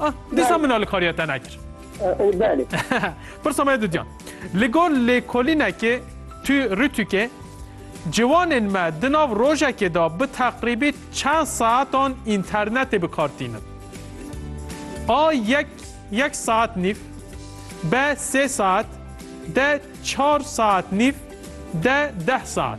Ah, dîsa min alikariya te nekir. Belê. Pirsa me dudyan. Li gor lêkolînekê tu rûtûkê ciwanên me di nav rojekê de bi teqrîbî çend saetan înternetê bi kar tînin. A yek yek saet nîv, B sê saet, D çar saet nîv, D deh saet.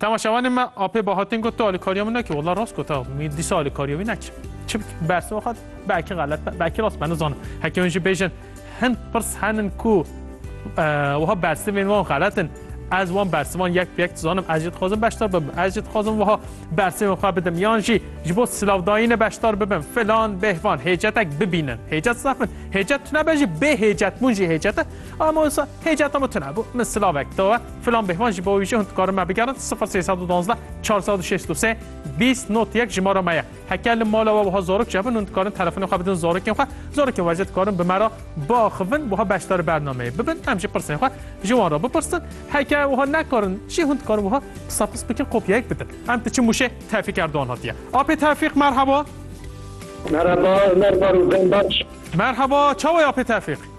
Temaşevanê me apê Bahatên got tu alîkariya min nekî. Wala rast got ew. Min dîsa alîkariya wî nekir. Çi bikim? Bersiva xwe di. Belkî xelet be, belkî rast be nizanim. Heke hûn jî bêjin hin pirs henin ku wiha bersivên wan xelet in. Ez wan bersivan yek bi yek dizanim. Ez jî dixwazim beşdar bibim. Ez jî dixwazim wiha bersivên xwe bidim. Yan jî ji bo silavdayînê beşdar bibim. Filan, bêhvan hêcetek bibînin. Hêcet zehf in. Hêcet tune be jî bêhêcetbûn jî hêcet e. Ama wisa Hêcata min tune bû, min silavek dawe, filan bêhvan ji bo wî jî hûn dikarin me bigerin, sifir sê sed û duwazdeh çar sed û şêst û sê bîst not yek jimara me ye. Heke li mala we wiha zarok çêbin hûn dikarin telefonê xwe bidin zarokên xwe, zarokên we jî dikarin bi me re biaxivin wiha beşdarî bernameyê bibin, em jî pirsên xwe ji wan re bipirsin, heke wiha nekarin jî hûn dikarin wiha pisa pis bikin kopyayek bidin. Em diçin mûşê Tevfîk Erdogan hatiye. Apê Tevfîq merheba. Merheba Ömer Barozenbaş. Merheba, çawa ye Apê Tevfîq?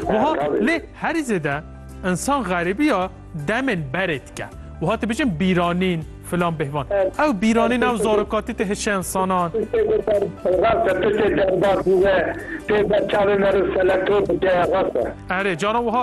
Wiha lê herî zêde insan xerîbiya demên berê dike. Wiha dibêjin bîranîn filan bêhvan. Ew bîranîn ew zarokatî tê hişê insanan. Rast e tu tê derbas bû ve tê ber çavê meriv seleto bike rast e. Erê caran wiha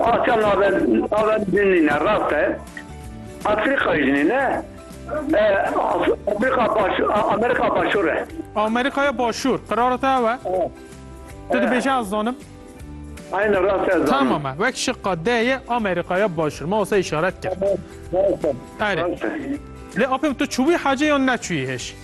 Asya navend navend dinîne rast e. Afrika jinîne Afrika baş Amerika başûr e. Amerikaya başûr qirara te ew e. Tu dibêje ez zanim. Aynen rast ez zanim. Tamam e. Wek şiqa D ye Amerikaya başûr. Ma wasa işaret kir. Erê. Lê apê tu çûbî hacê yan neçûyî hêj?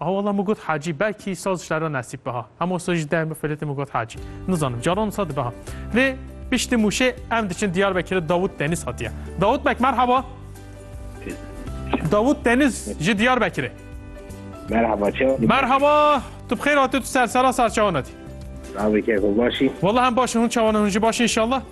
Aha wala min got Hacî belkî saz şera nesîb biha. Hema wisa ji deh min filetê min got Hacî. Nizanim caran wisa dibiha. Lê piştî Mûşê em diçin Diyarbekirê Dawût Deniz hatiye. Dawût Bek merhaba. Dawût Deniz ji Diyarbekirê. Merhaba çawa. Merhaba. Tu bixêr hatî tu sersera serçawan hatî. Navê keko başî. Wala hem başin hûn çawan hûn jî başin inşallah.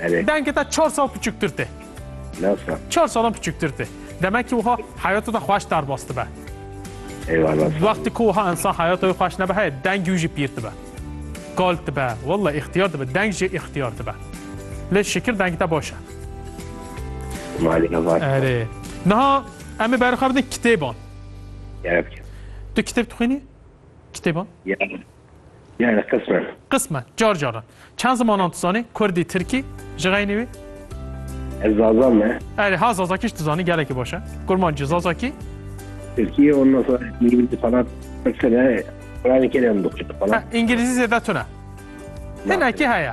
Evet. Dengê te çar sal piçûktir tê. Nasıl? Çar salan piçûktir tê. Demek ki wiha heyata te xweş derbas dibe. Eyvallah. Wextê ku wiha insan heyata wê xweş nebe heye dengê wî jî pîr dibe. Kal dibe, walla îxtiyar dibe, deng jî îxtiyar dibe. Lê şikir dengê te baş e. Malî hevat. Erê. Niha em ê berxwe bidin kitêban. Gerek. Tu kitêb dixwînî? Kitêban? Ya. Yani qismen. Qismen, car caran. Çend zimanan dizanî? Kurdî, tirkî, ji xeynî wî? Ez zazan me. Erê, ha zazakî jî dizanî, gelekî baş e. Kurmancî, zazakî? Tirkî, ondan sonra îngilîzî falan qisime Kur'an-ı Kerim dixwînim falan. Ha, îngilîzî zêde tune. Hinekî heye.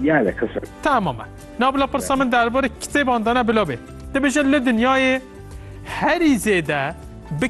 Yani qismen. Tamam e. Na bila pirsa min derbarê kitêban de ne bila bê. Dibêje li dinyayê herî zêde bi